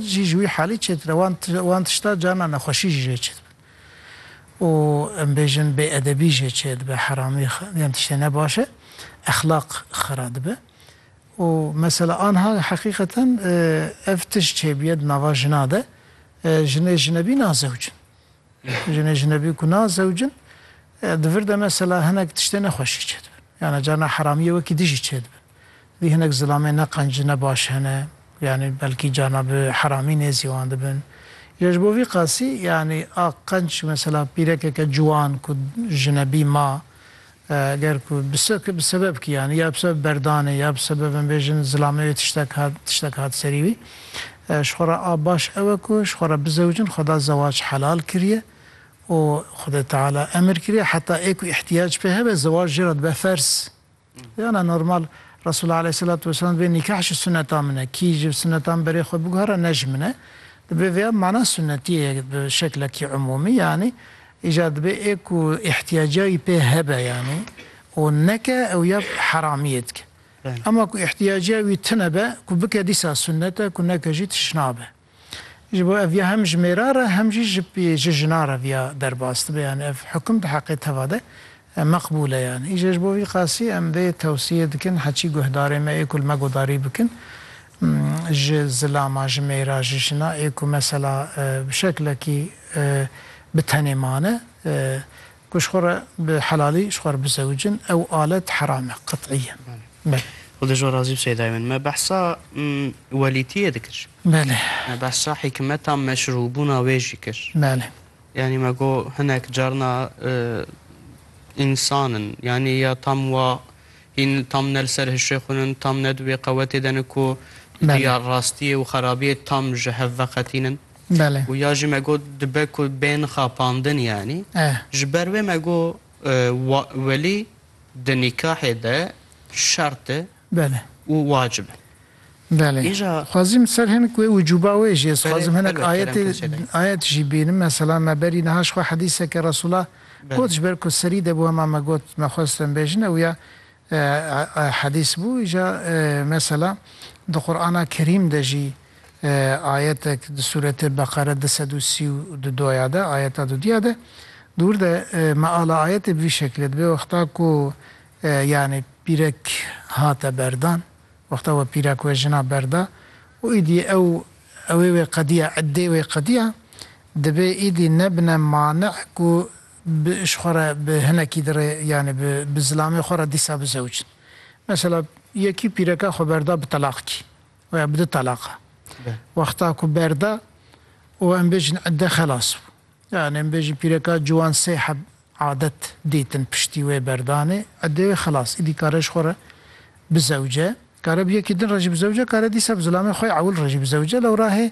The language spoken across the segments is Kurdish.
jî ji wî halî çêtir e, wan wan tişta carna nexweşî jî jê çêdibe û em bêjin bêedebî jê çêdibe, heramî yan tiştê ne baş e, exlaq xera dibe û mesela anha heqîqeten ev tişt çêbûye di nava jina de, jinê jinebî nazewcin, jinê jinebî ku nazewcin di vir de mesela hinek tiştê nexweşî çêdibin, yana carna heramiyê wekî di jî çêdibin. Dî hinek zilamê ne qenc ne baş hene yanî belkî carna bi heramî nêzî wan dibin. Ya ji bo vî qasî yanî a qenc mesela pîrekeke ciwan ku jinebî ma ger ku bi bi sebeb kî yanî ya bi sebeb berdanê ya bi sebeb em bêjin zilamê wê tiştek hat tiştek hat serî wî ji xwe re a baş ew e ku ji xwe re bizewicin xweda zewac helal kiriye û xwedê teala emir kiriye heta ê ku îhtiyac pê hebe zewac jê re dibe ferz. Yana normal Resûlullah aleyhîsselatu wesselam divê nîkah ji suneta min e. Kî ji suneta min berê xwe biguhere ne ji min e. Divê vêya mana sunetiyê ye bi şeklekî umûmî yanî îcar dibê ê ku îhtiyaca wî pê hebe yanî û neke ew ya heramiyê dike. Ema ku îhtiyaca wî tune be ku bike dîsa sunet e ku neke jî tişt nabe. Ji bo ev viya hem ji mêra re hem jî ji pî ji jina re viya derbas dibe yanî ev hukum di heqê teva de meqbûl e yanî. Îje ji bo vî qasî em vê tewsiyê dikin heçî guhdarê me ê ku li me guhdarî bikin ji zilama ji mêra ji jina ê ku mesela bi şeklekî bi tenê mane Ku ji xwe re bi helalî ji xwe re bizewicin ew alet heram e qet'î ye. Belê. Xwe de jo razî bi Seydayê min. Me behsa welîtiyê dikir. Belê. Me behsa hîkmeta meşrûbûna wê jî kir. Belê. Yanî me got hinek carna însan in. Yanî ya tam wa hîn tam ne li ser hişê xwe in, tam ne di wê qewetê de in ku di rastiyê û xerabiyê tam ji hev veqetînin. Belê. Û ya jî me got dibe ku bên xapandin yanî. Eh. Ji ber wê me got wa welî di nîkahê de şert e. Belê. Û wacib e. Belê. Îja. Xwezîm ser hinek wê wicûba wê jî ez Belê, xwezim hinek helbet, kerem ayetê kesê dayê. ayet jî bînim. Mesela me berî niha ji xwe hedîseke Resûla Belê. got ji ber ku serî de bû hema me got me xwest em bêjin ewya Hedîs bû îja mesela di Qur'ana Kerîm de jî ayetek di sûretê Beqere du sed û sî û du do ya de ayeta dudîya de di wir de meala ayetê bi vî şeklê dibe wexta ku yanî pîrek hate berdan wexta we pîrek wê jina berda û îdî ew ewê wê qedîya eddê wê qedîya dibê îdî nebine mani ku bi ji xwe re bi hinekî dirê yanî bi bi zilamê xwe re dîsa bizewicin. Mesela yekî pîreka xwe berda bi telaq kî weya bi du telaq e. Wexta ku berda û em bêjin idde xelas bû. Yanî em bêjin pîreka ciwan sê heb adet dîtin piştî wê berdanê iddê wê xelas. Îdî kare ji xwe re bizewice. Kare bi yekî din re jî bizewice, kare dîsa bi zilamê xwe ewil re jî bizewice lewra hê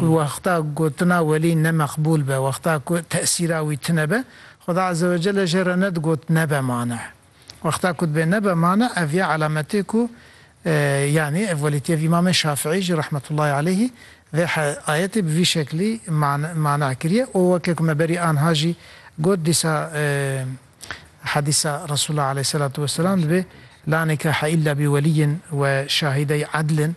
Ku wexta gotina welî ne meqbûl be, wexta ku tesîra wî tune be, Xweda Eze Wecele jê re ne digot nebe mane. Wexta ku dibe nebe mane ev ya elametê ku yanî ev welî tê ev Îmamê Şafîî jî rahmetullahî aleyhî vê ayetê bi vî şeklî mane kiriye û weke ku me berî anha jî got dîsa hedîsa Resûlullah aleyhî selatu weselam dibê La nîkahe îlla bi welîyin we şahîdey edlin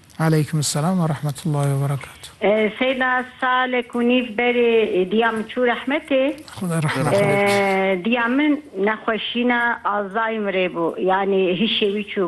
Aleykum selam ve rahmetullahi ve berekatuh. Seyda salek û nîv berê diya min çû rehmetê. Xuda rehmet bike. Diya min nexweşîna Alzheimerê bû yanî hişê wî çûbû.